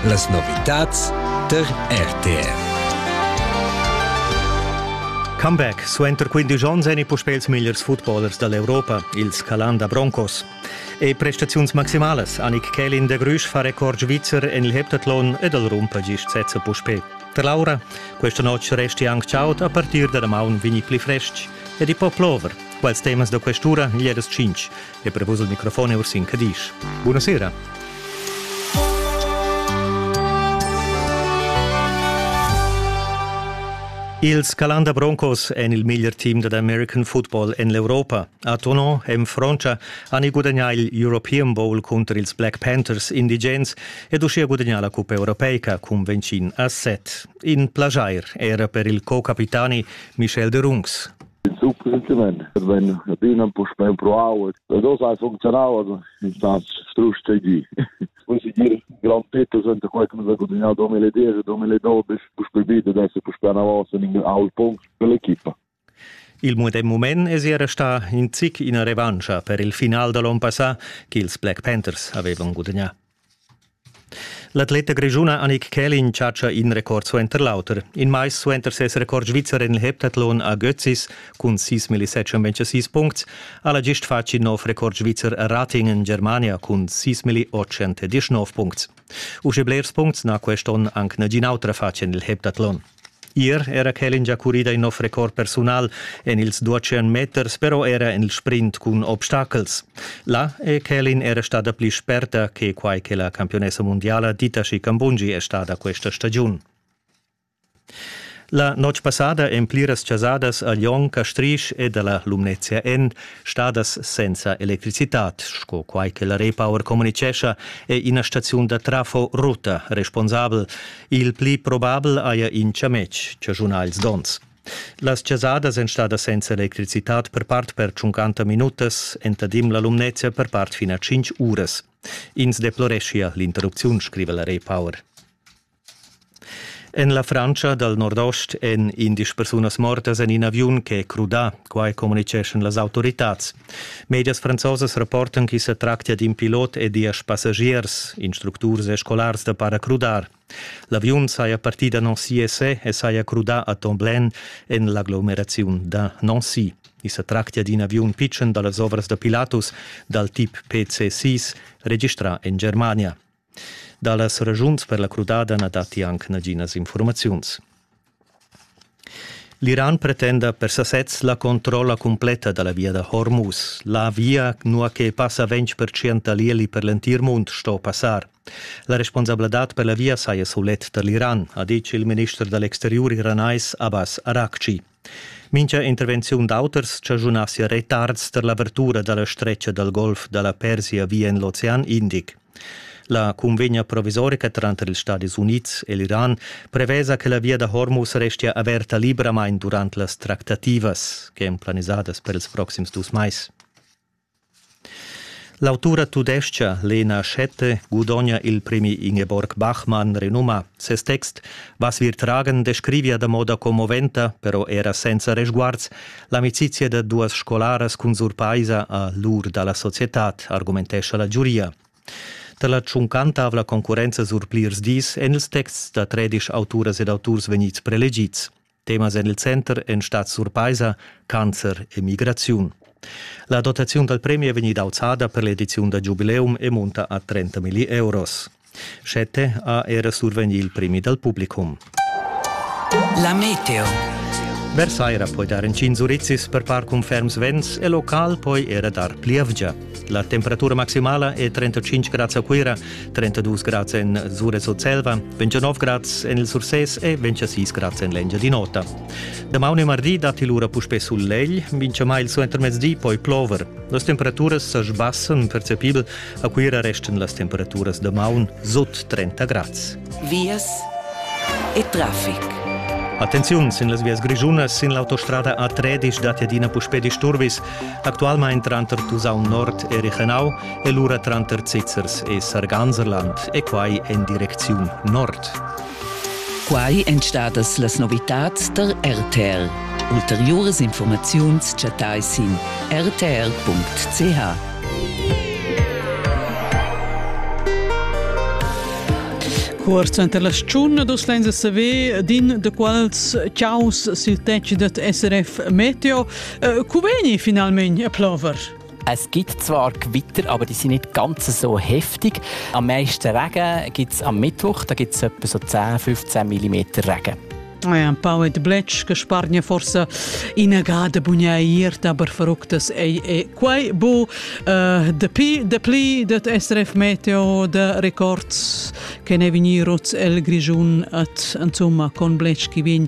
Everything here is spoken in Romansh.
Las novitads tar RTR. Comeback suenter 15 onns èni puspè ils migliers footballers da l'Europa, ils Calanda Broncos. E prestaziuns maximalas Annik Kelin de Grüsch fa record svizzer en il heptathlon ed al rumpa gist sezza puspè. Per Laura, questa notte resti anche ciaut a partir da damaun vini pli frestg ed i po plover. Quals temas da quest'ura gli edas 5 e prevus il microfon e Ursin Cadisch. Buonasera. Ils Calanda Broncos en il miglior team dad American football en l'Europa. A Tonon en Frontscha han i gudagnà il European Bowl cunter ils Black Panthers indigens ed uschia gudagnà la cuppa europeica cun Vencin a set. In plajair era per il co-capitani Michel de Rungs. il suc recentemente venne adina puspè empruau e dos hai funzionau also in stas strusch tgi poi si dir gran petto senta quai come da continuar 2010 2012 puspè vita adesso puspè una volta in aul punkt per l'equipa Il medem mument es era sta in zic ina revancha per il final da l'on passà ch'ils Black Panthers avevan gudagnà. L'atleta grischuna Annick Kählin chatscha in record suenter l'auter. In mais suenter ses record svizzer en il heptathlon a Götzis cun 6.706 puncts ha la gist fatg in nov record svizzer a Rating en Germania cun 6.819 puncts. Usche blers puncts n'ha quest onn anc nagin autra fatg en il heptathlon. Ier era quel ingiacurida in nov record persunal en ils duatschen meters, però era en il sprint cun obstacels. Là è Kelin era stada pli sperta che quai che la campionessa mundiala Dita Scicambungi è stada questa stagiun. La notg passada en pliras chasadas a Lyon, Castrisch ed alla Lumnezia en, stadas senza electricitat, sco quai che la Repower communicescha, è ina staziun da trafo rutta responsabel. Il pli probabel haja in chametg chaschunà ils donns. Las chasadas èn stadas senza electricitad per part per tschuncanta minutas, entadim la Lumnezia per part fin a tschintg uras. Ins deploreschia l'interrupziun, scriva la Repower. En la Frantscha dal nordost èn indisch persunas mortas en in aviun che è crudà, quai communitgeschan las autoritads. Medias franzosas rapportan ch'i sa tractia d'in pilot e diesch passagiers, instructurs e scolars da paracrudar. L'aviun saja partì da Nancy e e saja crudà a Tomblaine en l'aglomeraziun da Nancy. I sa tractia d'in aviun pitschen da las ovras da Pilatus dal tip PC-6 registrà en Germania. Dallas ragiuns per la crudada na datti anc naginas infurmaziuns. L'Iran pretenda per sasez la controlla cumpletta da la via da Hormuz. La via, nua che passa 20% da l'ieli per l'entir mund, sto passar. La responsabladad per la via saja sulet tar l'Iran, ha ditg il minister da l'exteriur iranais Abbas Araghchi. Mincha intervenziun d'auters chaschunassi retards per l'avertura da la stretga dal golf da la Persia via in l'ocean Indic. La cunvegna provisorica tranter ils Stadis Unids e l'Iran prevesa che la via da Hormuz restia averta libramain durant las tractativas, ch'èn planisadas per ils proxims dus mais. L'autura tudescha Lena Schette gudogna il premi Ingeborg Bachmann renumà. Ses text Was wir tragen descrivia da moda commoventa, però era senza resguards, l'amicizia da duas scolaras cun surpaisa a l'ur da la societad, argumentescha la giuria. Da la tschuncantavla concurrenza sur plirs dis èn ils texts da tredisch auturas ed auturs vegnids prelegids. Temas en il center èn stads surpaisa, cancer e migraziun. La dotaziun dal premi è vegnida auzada per l'ediziun da giubileum e munta a 30 milli euros. Schette ha era survegnì il premi dal publicum. La meteo. Versaira poi dar in cin zurizis per par cun ferms vents e local poi era dar plievgia. La temperatura maximala è 35 grads a Cuira, 32 grads en Zure Surselva, 29 grads en il Sursés e 26 grads en l'Engiadin'Ota. Damaun e mardi datti lura puspè sulegl, mincha mai il suentermezdi poi plover. Las temperaturas sa sbassan percepibel, a Cuira restan las temperaturas damaun sut 30 grads. Vias e traffic. Attenziun sin las vias grischunas sin l'autostrada A3 datti adina puspè disturbis. Actualmein tranter Tusaun Nord e Richenau e lura tranter Zizzers e Sarganserland e quai en direcziun nord. Quai èn stadas las novitads da RTL. Ulteriuras informaziuns chattai sin rtl.ch. Cuort suenter la stagiun dus lenza saver din de quals chaus sil tetg dad SRF Meteo Äh, cu veni finalmein a plover? Es gibt zwar Gewitter, aber die sind nicht ganz so heftig. Am meisten Regen gibt es am Mittwoch, da gibt es etwa so 10, 15 mm Regen. Ah ja, ein paar mit Bletsch gesparten ja forse innegate bugnaiert, aber verrückt das è, è quai bu uh, de pi, de pli det SRF Meteo de Records che ne veniroz el Grigiun at insomma con Bletsch chi vegn